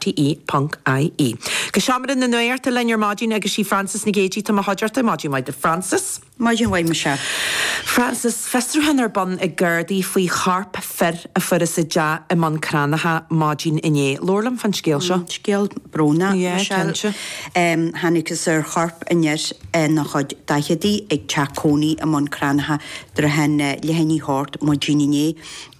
TE.ie. Go seomra na nuachta linn ar maidin agus sí Frances Nic Géidigh atá i mo chuideachta. Maidin mhaith duit Frances. Maidin mhaith Michelle. Frances, Fiosrúchán ar bun ag Gardaí faoi chorp fir a fuarthas i dteach i mBun Cranncha maidin inné. Labhair liom fán scéal seo. Scéal brónach, Michelle. Thángthas ar chorp fhir ina chuid daicheadaí ag teach cónaí i mBun Cranncha, thart fán leath i ndiaidh a hocht, maidin inné.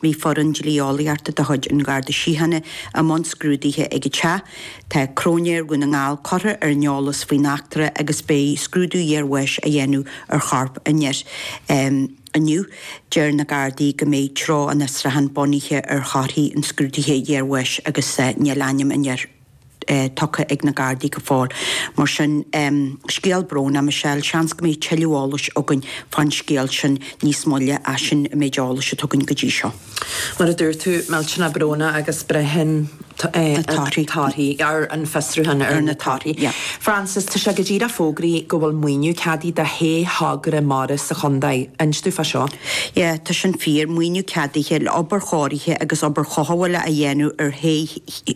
Bhí foireann dlí-eolaíochta de chuid an Gharda Síochána i mbun scrúdaithe ag an teach. Tá Cróinéir Dhún na nGall curtha ar an eolas faoin eachtra agus beidh scrúdú iarbháis á dhéanamh ar chorp an fhir inniu. Deir na Gardaí go mbeidh treo an fhiosrúcháin bunaithe ar thorthaí an scrúdaithe iarbháis agus níl ainm an fhir. tugtha ag na Gardaí go fóill. Mar sin, scéal brónach, Michelle. Seans go mbeidh tuilleadh eolais againn fán scéal sin níos moille, ach sin an méid eolais atá againn go dtí seo. Mar a dúirt tú, millteanach brónach agus braitheann treo an fhiosrúcháin ar na torthaí. Frances, tá sé go díreach fógraithe go bhfuil maoiniú ceadaithe do shé thogra mara sa chontae. Inis dúinn fá seo? Yeah, tá sin fíor. Maoiniú ceadaithe le obair chóirithe agus obair chothabhála a dhéanamh ar shé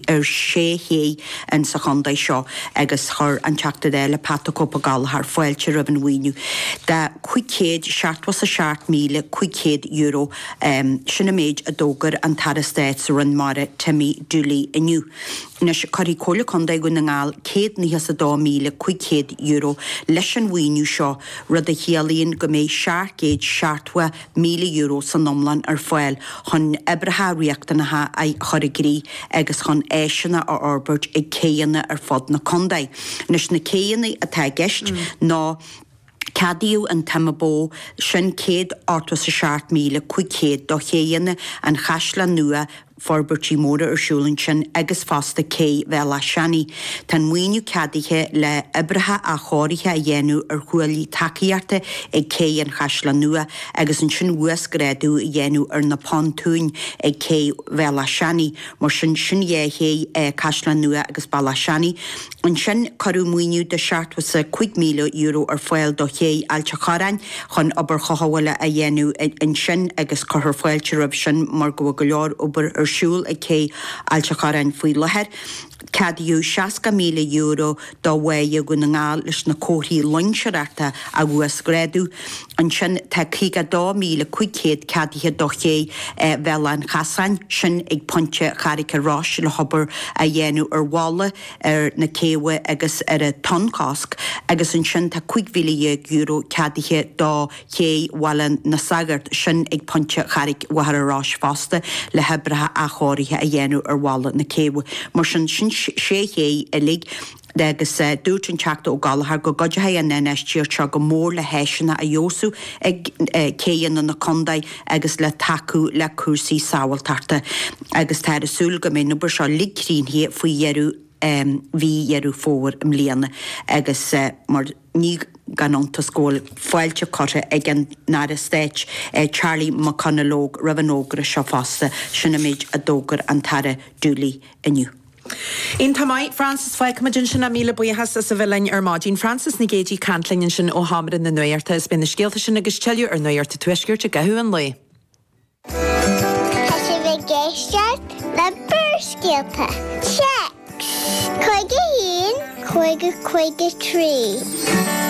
ar shé ché in sa chontae seo agus chuir an Teachta Dála, Pat the Cope Gallagher, fáilte roimh an mhaoiniú de chúig chéad seachtó is a seacht míle cúig chéad euro. Sin an méid a d'fhógair an tAire Stáit sa Roinn Mara, Timmy Dooley, inniu. Anois, cuirfidh Comhairle Contae Dhún na nGall céad nócha is a dó míle cúig chéad euro leis an mhaoiniú seo, rud a chiallaíonn go mbeidh seacht gcéad seachtó míle euro san iomlán ar fáil chun oibreacha riachtanacha a chur i gcrích agus chun áiseanna a fhorbairt ag céanna ar fud na contae. Anois, na céanna atá i gceist ná, ceadaíodh an tsuim ba mhó, sin céad ochtó is a seacht míle cúig chéad do chéanna an Chaisleáin Nua, forbairtí móra ar siúl ansin agus fosta cé Bhéal Átha Seanaidh. Tá an maoiniú ceadaithe le hoibreacha athchóirithe a dhéanamh ar chuaillí tacaíochta ag cé an Chaisleáin Nua agus ansin uasghrádú a dhéanamh ar na pontúin ag cé Bhéal Átha Seanaidh. Mar sin, sin dhá ché, Caisleán Nua agus Béal Átha Seanaidh. Ansin cuireadh maoiniú de €75,000 ar fáil do Ché Ailt an Chorráin chun obair chothabhála a dhéanamh ansin agus cuirfear fáilte roimh sin mar go bhfuil go leor obair ar siúl ag Cé Ailt an Chorráin faoi láthair. Ceadaíodh €60,000 do Bháighe Dhún na nGall leis na comharthaí loingseoireachta a uasghrádú. Ansin tá €52,500 ceadaithe do Ché Bhéal an Chasáin, sin ag pointe Charraig a' Rois, le hobair a dhéanamh ar bhalla, ar na céibhe agus ar an tonnchosc agus ansin tá €15,000 ceadaithe do Ché Bhaile na Sagart, sin ag Pointe Charraig Mhachaire Rois fosta, le hoibrithe athchóirithe a dhéanamh ar bhalla na céibhe. Mar sin, sin sé ché uilig agus dúirt an Teachta Ó Gallchóir go gcuideoidh an infheistíocht seo go mór le háiseanna a fheabhsú ag céibheanna na contae, agus le tacú le cúrsaí sábháilteachta agus táthar ag súil go mbeidh an obair seo uilig críochnaithe faoi dheireadh mhí Dheireadh Fómhair i mbliana agus mar ní gan iontas go bhfuil fáilte curtha ag an nAire Stáit Charlie McConalogue roimh an fhógra seo fosta, sin an méid a d'fhógair an tAire Dooley inniu. Iontach maith, Frances, fágfaidh muid ansin é, míle buíochas as a bheith linn ar maidin. Frances Nic Géidigh ag caint linn ansin ó Sheomra na Nuachta. Is beidh na scéalta sin agus tuilleadh ar Nuacht an Tuaiscirt i gcaitheamh an lae. Tá sibh ag éisteacht le Barrscéalta Téacs 51 553.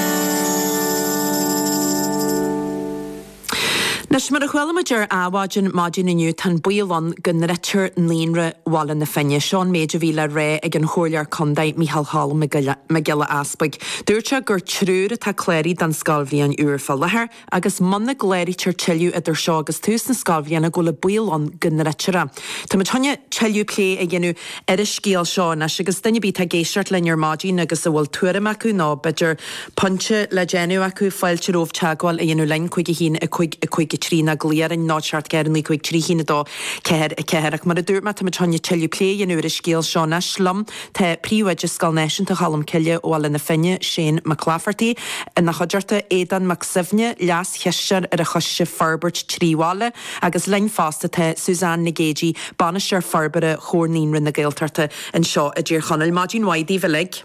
Anois, mar a chuala muid ar Adhmhaidin maidin inniu, tá an baol ann go ndruidfear Naíonra Bhaile na Finne. Seo an méid a bhí le rá ag an Chomhairleoir Contae, Micheál Cholm Mac Giolla Easpaig. Dúirt sé gur triúr atá cláraithe don scoilbhliain úr fá láthair agus muna gcláraítear tuilleadh idir seo agus tús na scoilbhliana go bhfuil an baol ann go ndruidfear é. Tá muid chun tuilleadh plé a dhéanamh. ar an scéal seo anois agus duine ar bith atá ag éisteacht linn ar maidin agus a bhfuil tuairim acu nó, b'fhéidir, pointe le déanamh acu, fáilte romhaibh teagmháil a dhéanamh linn, 51 553 nó glaoigh orainn, 0 7 4 9 5 3 1 2 4 4. Ach mar a dúirt mé, táimid chun tuilleadh plé a dhéanamh ar an scéal seo anois. Liom tá Príomhoide Scoil Náisiúnta Cholm Cille, Bhaile na Finne, Shane McClafferty, ina chuideachta, Aodán Mac Suibhne, Leas-Chisteoir ar an Choiste Forbairt Trí Bhaile, Agus linn fosta tá Suzanne Nic Géidigh, Bainisteoir Forbartha Chomhar Naíonraí na Gaeltachta anseo i dTír Chonaill. Maidin mhaith daoibh uilig.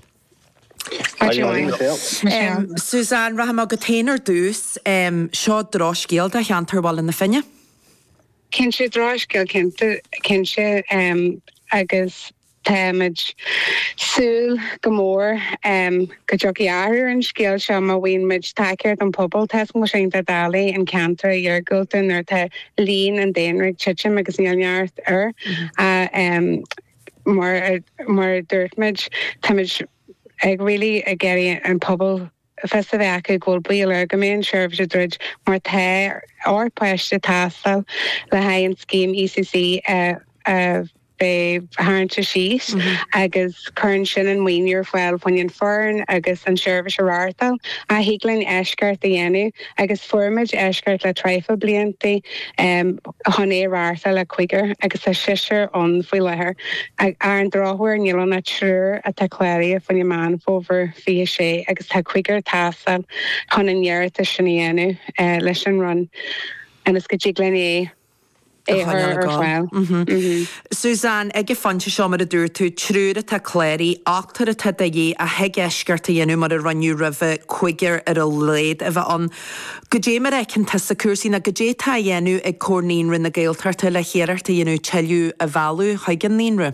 Maidin mhaith Michelle. Suzanne, rachaidh mé chugat féin ar dtús. Seo drochscéal do cheantar Bhaile na Finne. Cinnte, drochscéal cinnte, agus Táimid ag súil go mór go dtiocfaidh athrú ar an scéal seo má fhaigheann muid tacaíocht an pobal. Tá a fhios agam tá sin doiligh in ceantar iargúlta nuair atá líon an daonra ag titim agus níl neart air. Mar a dúirt muid, táimid ag really ag iarraidh an pobal. fios a bheith acu go bhfuil baol air go mbeidh an tseirbhís ag druid mar tá ochtar páiste ag teastáil le haghaidh an scéim ECC a bheith tarraingthe síos agus cuireann sin an maoiniú ar fáil fá choinne an fhoireann agus an tseirbhís a reáchtáil. Ach thig linn eisceacht a dhéanamh. Agus fuair muid eisceacht le traidhfil bliantaí chun é a reáchtáil le cúigear, agus tá seisear ann faoi láthair. Ar an drochuair níl ann ach triúr atá cláraithe fá choinne Meán Fómhair 26 agus tá cúigear ag teastáil chun an t-iarratas sin a dhéanamh leis an Roinn ionas go dtig linn é a choinneáil ag gabháil. Suzanne, ag an phointe seo, mar a dúirt tú, triúr atá cláraithe, ochtar atá de dhíth, ach thig eisceacht a dhéanamh mar a rinneadh roimhe, cúigear ar a laghad a bheith ann. Goidé mar a fheiceann tusa cúrsaí, nó goidé atá á dhéanamh ag Comhar Naíonra na Gaeltachta le hiarracht a dhéanamh tuilleadh a mhealladh chuig an naíonra?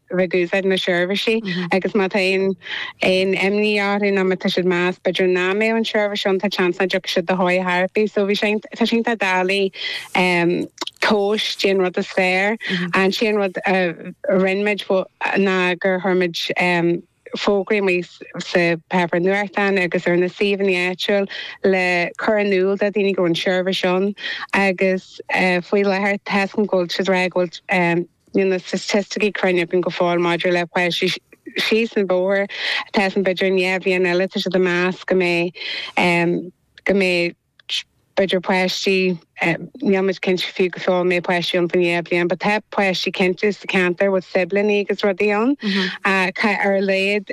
ag úsáid na seirbhísí agus má tá aon imní orthu nó má tá siad ag meas b'fhéidir nach mbeadh an tseirbhís ann tá seans nach dtiocfaidh siad chun tosaigh ar chor ar bith. So bhí sé tá sin tá dálaí um, 'cause dé an rud is fearr an sé an rud a rinne muid ná gur chuir muid fógraí amuigh sa pháipéar nuachtáin agus ar na suíomhanna áitiúil le cur in iúl do dhaoine go bhfuil an tseirbhís ann agus faoi láthair tá seans níl na staitisticí cruinn againn go fóill maidir le páistí síos an bóthar, tá seans b'fhéidir i ndá bhliain eile tá siad ag meas go mbeidh. b'fhéidir páistí, níl muid cinnte fiú go fóill an mbeidh páistí ann faoin am seo dhá bhliain but tá páistí cinnte sa ceantar a bhfuil siblíní agus rudaí ann ach ar a laghad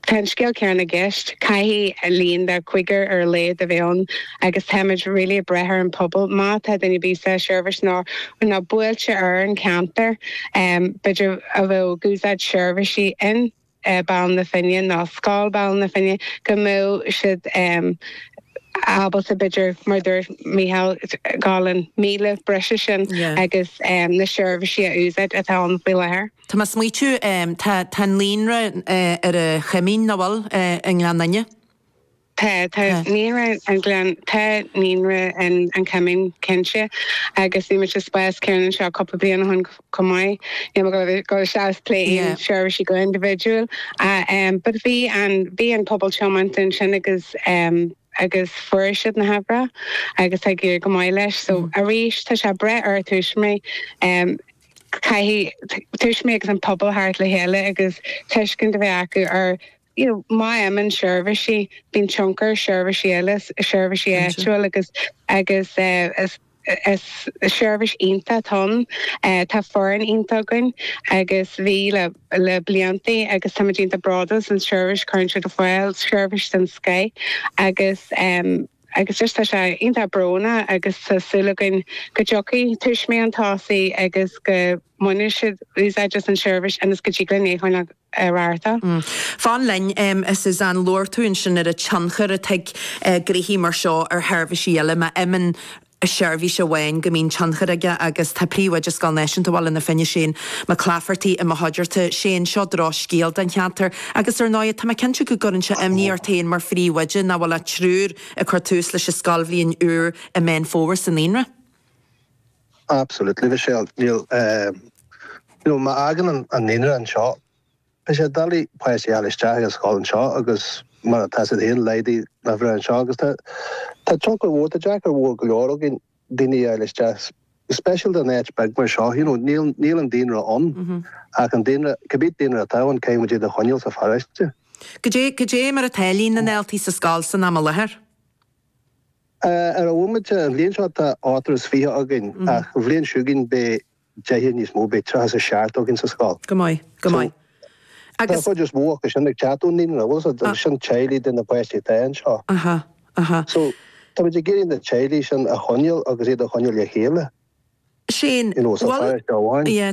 tá an scéal céanna i gceist, caithfidh líon de chúigear ar a laghad a bheith ann agus tá muid really ag brath ar an pobal má tá duine ar bith sa seirbhís nó na bailte thart ar an ceantar b'fhéidir atá ag úsáid seirbhísí in. Baile na Finne nó Scoil Bhaile na Finne, go mbeadh siad ábalta, b'fhéidir, mar a dúirt Micheál, gabháil an míle breise sin agus na seirbhísí a úsáid atá ann faoi láthair. Tá mé ag smaoitiú, tá naíonra ar an Choimín, nach bhfuil, i nGleann Fhinne? Tá, tá naíonra an Gleann, tá naíonra an an Choimín cinnte agus bhí muid sa spás céanna seo cúpla bliain ó shin chomh maith. Níl mé ag gabháil isteach is plé aon seirbhísí go individual ach em but bhí an bhí an pobal tiomanta ansin agus em agus fuair siad na huimhreacha agus tá ag éirí go maith leis so arís tá sé ag brath ar tuismitheoirí em caithfidh t- tuismitheoirí agus an pobal teacht le chéile agus tuiscint a bheith acu ar you know má imíonn seirbhísí bíonn tionchar ar sheirbhísí eile seirbhísí áitiúil agus agus is is seirbhís iontach atá ann tá foireann iontach againn agus bhí le le bliantaí agus táimid iontach bródúil as an tseirbhís cuireann siad ar fáil seirbhís den scoith agus agus just tá sé iontach brónach agus tá súil againn go dtiocfaidh tuismitheoirí chun tosaigh agus go mbainfidh siad úsáid as an seirbhís ionas go dtig linn é a choinneáil ar Arta. Fan linn nóiméad, a Suzanne. Labhair tú ansin ar an tionchar atá ag gnoithí mar seo ar sheirbhísí eile. Má imíonn seirbhís amháin go mbíonn tionchar aige agus tá Príomhoide Scoil Náisiúnta Bhaile na Finne, Shane Mac Laifeartaigh i mo chuideachta. Shane, seo drochscéal don cheantar agus ar ndóigh tá mé cinnte go gcuireann sé imní ort féin mar phríomhoide nach bhfuil ach triúr ag cur tús leis an scoilbhliain úr i Meán Fómhair sa naíonra. Absolutely, a Mhichelle. Níl, eh, you know, má fhágann an, an naíonra anseo, beidh sé doiligh páistí a fháil isteach ag an scoil anseo agus mar atá siad féin laghdaí nach bhfuil anseo agus tá, tá tionchar mór, tá sé deacair mhór go leor againn daoine a fháil isteach, speisialta in áit bheag mar seo, you know, níl, níl an daonra ann ach an daonra, cibé daonra atá ann, caithfidh muid iad a choinneáil sa pharóiste. Goidé, goidé mar atá líon na ndaltaí sa scoil san am i láthair? Ar a bhomaite, an bhliain seo tá ochtar is fiche againn, ach an bhliain seo chugainn beidh deichniúr níos mó, beidh tríocha is seacht againn sa scoil. Go maith, go maith. Agus. Tá an chuid is mó acu sin ag teacht ón naíonra, bhfuil 'fhios a'd, sin teaghlaigh de na páistí atá anseo. Aha, aha. So, tá muid ag iarraidh na teaghlaigh sin a choinneáil agus iad a choinneáil le chéile. Sea, bhuel. You know, sa pháirc amháin. Yeah.